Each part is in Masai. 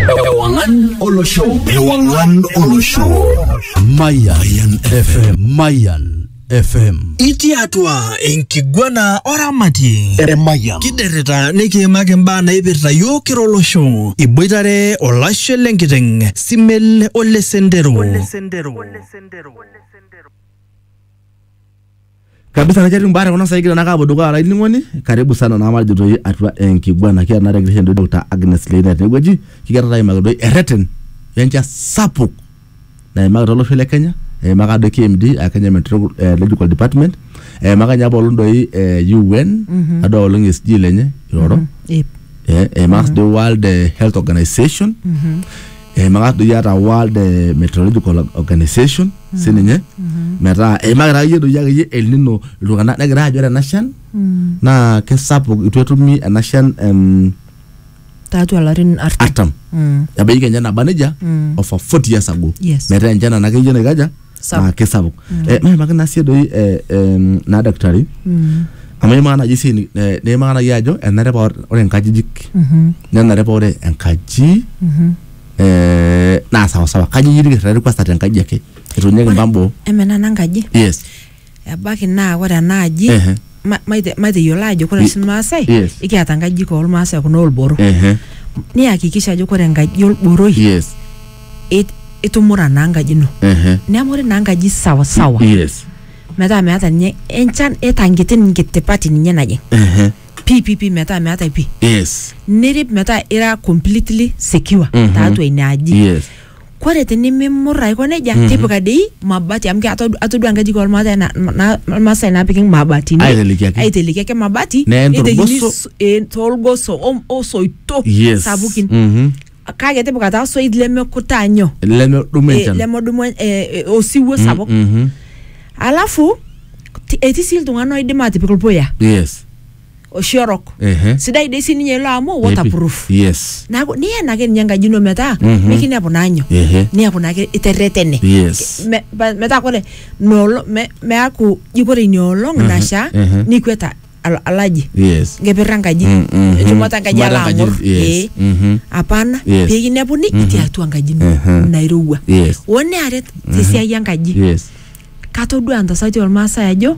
Ewangan Olo Show. Ewangan Olo Show. Mayan FM. Mayan FM. Itii atua enkiguana oramatie Emayian. kiderrita nikiimaki imbaa naipirta yiok kira olosho iboitare olashe lenkiteng simel olesendero kabisa na ketii mbaa tekuna saikita na kapo dukuya olainining'oni karibu sana na matejo toi atua enkiguana kiata na tekirisha entoki dr agnes leina tenewueji kigira taa aimaki doi erreten wencha sapuk naimaki tolosho le kenya eimaka doi kmd a kenya meteorological department eimaka ninye apaelong doi eh, un adol apaelong esg lenye iroro Ip. eh, eimaka si doi world eh, health organization eimaka doi ata world eh, meteorological organization sininye metaa eimaka taa iyie doi akeyie el nino iltung'anak negira ajo ore ena shan naa kesapuk itu etumi ena shan em, tiatua larin artam artam Mm. ebaiki kenya naba nejia Mm. of a 40 years ago Yes. metaa enchan ena akeyie naikaja Sapuk. naa kisapuk Eh, maimaki naa sii doi eh, em, naa daktari amu imaa naji sii ni- eh, nimaa naji ajo enare paa ore- ore nkajijik nenare paa ore enkaji eh, naa sawasawa kaji iyieu nikirrari kwanza te nkaji ake etuunyeki mbaa boo Emenana enkaji. yes ebaiki naa ore ena aji Ehe. ma- maite- mateyiolo ajo ore oshi irmaasai Yes. ikiata nkajijik ormaasai kuna olboro Ehe. niyakikisha ajo ore enkaji olboroi Yes. it- itumura naa enkaji ino Ehe. neeku ore naa enkaji sawasawa Yes. metaa meeta ninye enchan eta nkiti nkitipati ninye najing Ehe. pii pii pii metaa meetae pii Yes. nirip metaa ira completely secure Mhm. tiatua ina aji Yes. Kore tinimimur aiko neja, tipika dei mabati amu keata atodua nkajijik olmaasai na- na- Ilmaasai naapiki mabatini. Aiteleki ake. Aiteleki ake mabati. Neen neitekini tolgoso. so- eh, tolgoso o- o soito Yes. sapukin. Mhm. Kake tipika taa soit lemekutaa nyoo? Lemedumu Eh, enchan. lemedumu eh, eh, osiwuo sapuk. Mhm. Alafu ti- etii sii iltung'ana oidim aatipik ilpuya. Yes. oshi orok Ehe. sidai dei sininye ilo amu Epi- waterproof yes naaku niyen ake ninye enkaji ino metaa Mhm. mikinepu naa nyoo Ehe. niaku naake iterretene yes Me- ba- metaa kore noolo me- meaku ji kore inia olong Mhm, nasha mhm. nikweta al- alaji yes nkeper enkaji Mm, mhm. enchumata enkaji Shumata ala enkaji, ang'or yes. ee Mhm. apana Yes. pikinepuni itii atua enkaji ino Mhm. nairowua Yes. onearet tesiai enkaji yes katodua ntasati ormaasai ajo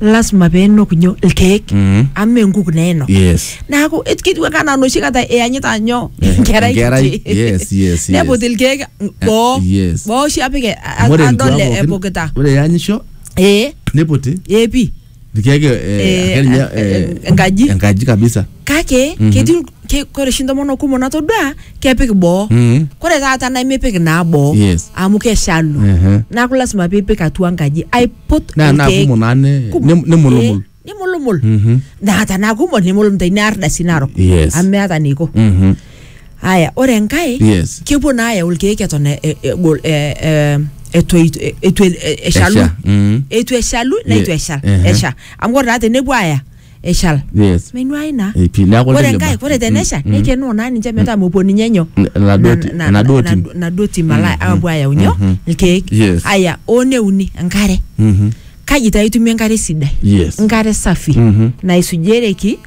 lasima peenok nyo ilkeek Mhm. amu mee nkuk neenok yes neaku et- ketiu ake anaa noshi kata iyanyita nyo Eh, enkerai enkerai, kiti. yes, yes, neput yes. ilkeek boo yes. boo oshi apik e- a- Amu ore adol nkuapo pookin- epukita ore eanyisho ee neputi ee pii Irkeek eh, Eh, ake ninye, eh, eh, enkaji. enkaji kabisa kake Mhm. ketii il- ke- kore oshi ntomonok kumok natodua kepik boo Mhm. kore taata nemipik naa boo Yes. amu keshalu Ehe. neaku lasima piipik atua nkaji aiput naa naa irkeek kumok naa ne- kumok. nem- nemulumul Eh, nemulumul Mhm. naa tanaa kumok nemulumul tainear dasi narok Yes. amu meata neiko Mhm. aya ore enkae Yes. kepuo naa ayau irkeek eton e- e- egol e- e- etoito- e- eitu e- e- eshalu Esha, mm. eitu eshalu Ye- neitu eshal ehe. esha amu ore taa tenepuo aya eshal Yes. menuai naa Eh, pii, neeku ore leleba. enkae ore tenesha Mm, mm. nekenoo naa ninche metaa mepuo ninye nyoo N- enaduo ti- na- na- enaduo na- tim. enaduo tim ala Mhm, apuo ayau nyoo mhm. irkeek Yes. aya oo neuni enkare Mhm. kaji taa itumie enkare sidai Yes. enkare safi Mhm. naisujereki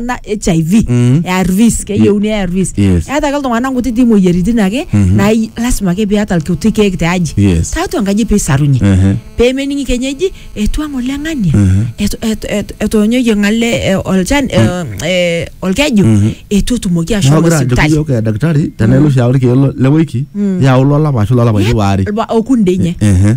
na HIV Mm. ARVs keyieuni ARVs Yes. eeta ake iltung'anak nkutiti moyiaritin ake Mhm. naa i- lasima ake piata ilkuti keek te aji Yes. tiatua enkaji peisarunye Ehe. pemening kenyeji etua ng'ole ng'ania Mhm. etu- etu- etu- etoonyoyie ng'ale eh, olchan eh, eh, olkeju Mhm. etu etumoki Neeku ashomo agira ajoki sipitali iyiok eh, daktari tenaa ilo oshi ayau irkeek lo- le wiki yau lolapa ashu lolapaitin waare Lba- okundinye Ehe.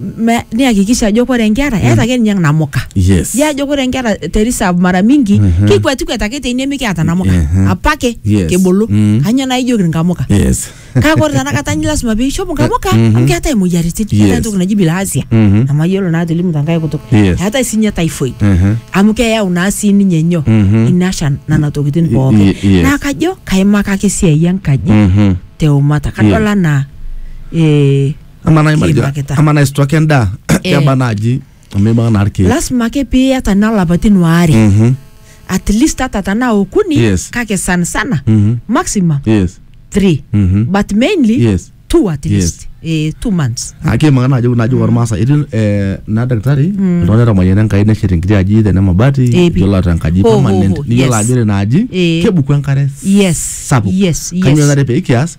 ma- nihakikisha ajo kore inkera eeta ake ninye namuka Yes. ya ajo kore inkera te reserve mara mingi kikwetikwet ake teine mikiata namuka Mhm. apake Yes. kibulu Mm. kanyoo naa ijoki nkamuka Yes. kake ore tanakata nyi lasima piishop nkamuka Mhm. amu keetae imoyiaritin Yes. eetae entoki naji bilhasia Mhm. namayiolo naa atolimu tenkae kutuk Yes. eetae sinye typhoid Mhm. amu keyau naa sii ninye nyoo Mhm. ina shan nana tokitin Y- pooki y- yes. naa kajo kaimakaki esiai enkaji Mhm. teumata kadol Yes. anaa eh, amaa nai matejo Kiimakita. amaa nai stock endaa Eh. keba naaji amu ibaa naa irkeek lasima ake piiyata naa lapaitin waare Mhm, at least hata tanaa okuni Yes. kake sana sana mhm, maximum yes three mhm. but mainly Yes. two at Yes. least eh, two months ake maka naaji naaji ormaasa etii eh, naa daktari iltung'anak etamayiana enkai neshet enkiti aji tene mabati Eh, pi. iyiolo ataa enkaji Ho, ho, permanent ho, niyiolo yes. ajo ore ina aji Eh. kebuku enkare yes sapuk yes kanyoo yes nare pee kias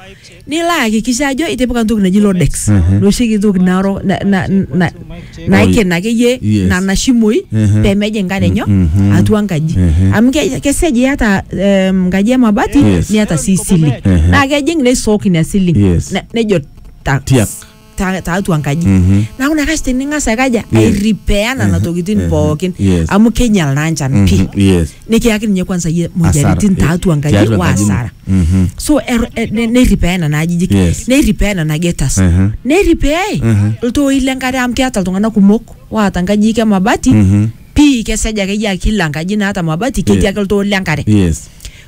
nilo ayakikisha ajo itipika entoki naji lodex nooshieki entoki narok na- na- na- naikena akeyie Yes. nana shimoi Mhm. pemeja enkare enyo Mhm. atua enkaji Mhm. amu ke- kesej iyata em, enkaji emabati Yes. niata sii siling Mhm. naa kejing neisook ina siling Yes. Ne- nejo tax Tiak. ta- tiatua enkaji Mhm. naaku nakash tining'as aikaja Yeah. airipea nana Mhm. tokitin Mhm. pookin Yes. amu keinyal naa nchan Mhm. pii Yes. nikiyaki ninye kwanza yie moyiaritin Hasara. tiatua enkaji Tiatua o enkaji ino. asara Mhm. so er- eh, ne- neiripea nena ajijik Yes. neiripea nena getas Mhm. neiripeai Mhm. iltooi lenkare amu keata iltung'anak kumok waata nkajijik e mabati Mhm. pii kesej akeyie akila nkaji naata mabati ketii Yeah. ake iltoo lenkare Yes.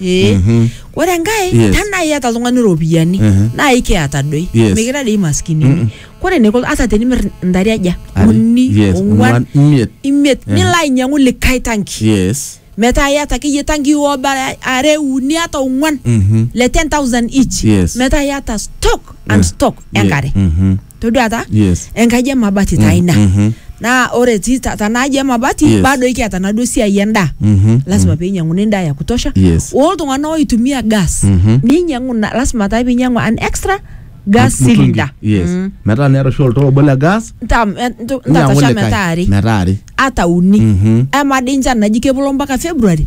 ee Mhm. ore enkae Yes. tanaa iata oltung'ani iropiyiani Mhm. naa ikiata doi Yes. mikira dei maskinini kore eniko ata tenimir intare aja Are- uni yes, ong'uan imiet imiet Mhm. nilo ainyang'u likae tanki yes metaa iata akeyie tanki obara are uni ata ong'uan Mhm. le 10000 each Yes. metaa iata stock and Yeah. stock Ye- enkare Mhm. todua taa Yes. enkaji emabati taa ina Mhm. naa ore ti ta- tanaaji emabati Yes. bado ikiata naduo siai endaa Mhm. lasima peinyang'uni endaa ya kutosha Yes. oltung'anak oitumia gas Mhm. ninyang'u na- lasima taa pinyang'u an extra gas Mtungi. cylinder Yes. Mm. Metaa niata oshi oltoo obo le gas. Ntam- eh, ntu- ninyang'u ntatasha likae. metaa are Metaa are. ata uni Mhm. ama dii nchan naji kepolo mpaka february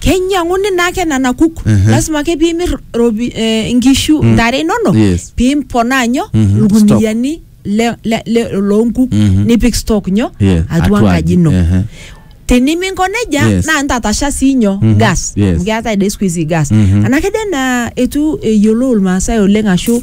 keinyiang'uni naake nena kuk Mhm. lasima ake piimir ropi eh, inkishu ntare inonok Yes. piimponaa nyo Mhm. ilkuniani le- le- le- loonkuk Mhm. nipik stock nyo Yes, atua atua enkaji ino aji, ehe. teniminko nejia Yes. naa ntatasha sii nyo Mhm. gas Yes. amu keetae dei siku hizi gas Mhm. anake dei naa etu eyiolou ilmaasai oleng ashu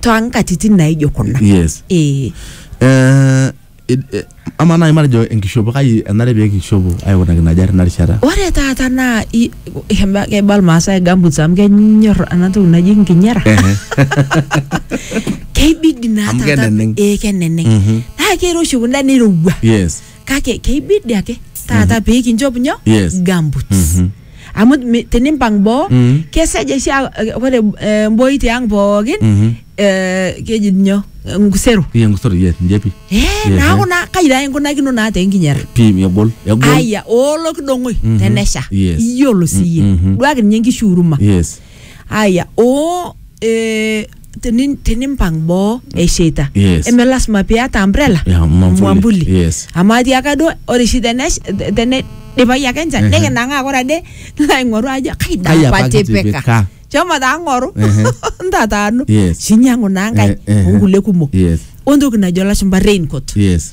toonkatitin naijo kuna yes ee Eh, id- eh, ama naaji matejo enkishopo kai enare pee kishopo aikunaki ina jari ina rishata ore taata naa i- keba- keba irmaasai gamboots amu kenyor ena toki naji nkinyera Ehe. keibidi naa Amu taata- keneneng'. ee keneneng Mhm. naa keiroshi kunda neirowua yes kake keibidi ake taata pee kinchop nyoo Yes. gamboots Mhm. amu mi- tinimpang boo Mm. kesej oshi a- eh, ore eh, mboi tiang pookin Mhm. eh, keji nyoo eh, nkusero Iya ngusoro yes njepi. Eh, Yeah, naaku eh. naa kai taa inkunakino naa tenkinyera Pi egol egol. aya oolo kidong'oi Mm-hmm. tenesha Yes. iyiolo siyie Mm, mhm. duaki ninye nkishu uruma Yes. aya o eh, teni- tenimpang boo esheita Yes. eme lasima piata umbrella Yeah, mwambuli. mwambuli Yes. amu atiaka duo ore shi tenesh- te- teneidipai ake enchan Ehe. nikinang'aa kore ade nilo aing'oru ajo Kai kaida apa apa atipika kitipika?" shomo taa ng'oru Ehe. ntataanu Yes. shinyang'u naa nkae Eh, ehe. onkulie kumok Yes. ontoki najo lashumba raincoat Yes.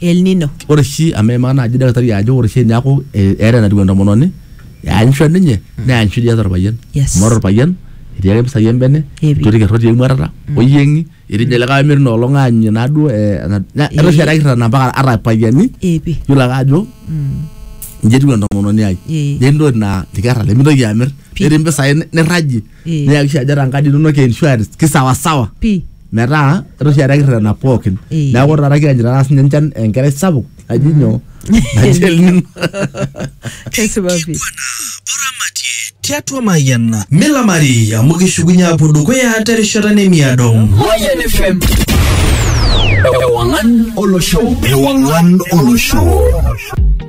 El Nino. ore oshi amu eimaa naaji daktari ajo ore oshi eneeku eh, eeta enatiu entomononi eanyisho ninye neanyisho dii eeta orpayian Yes. amu ore orpayian etii ake mpisai embene Epi. etii orkerroti emuatata oyieng'i etii ninye likae omirr inoolong aanyunye naaduo eh, ena- na- etaa oshi etaa kirrana mpaka ata irpayiani Epi. yiolo ake ajo inji etiu entomononi ai Eh. netii ntokitin naa irkerra lemitoki amir Pi. netii mpisai nirrajie Eh. neyakisha ajo ata nkadi inonok e insurance kisawasawa pi metaa etaa oshi etaa kirrerena pookin Eh. neeku taata kianyu taata sinye enchan enkerai sapuk naji nyoo naji El Nino. kesipa pi tiatua mayiana milamari amu kishukunye apuo dukuya terishata nemiado Mayan FM. Ewangan Olosho. Ewangan Olosho.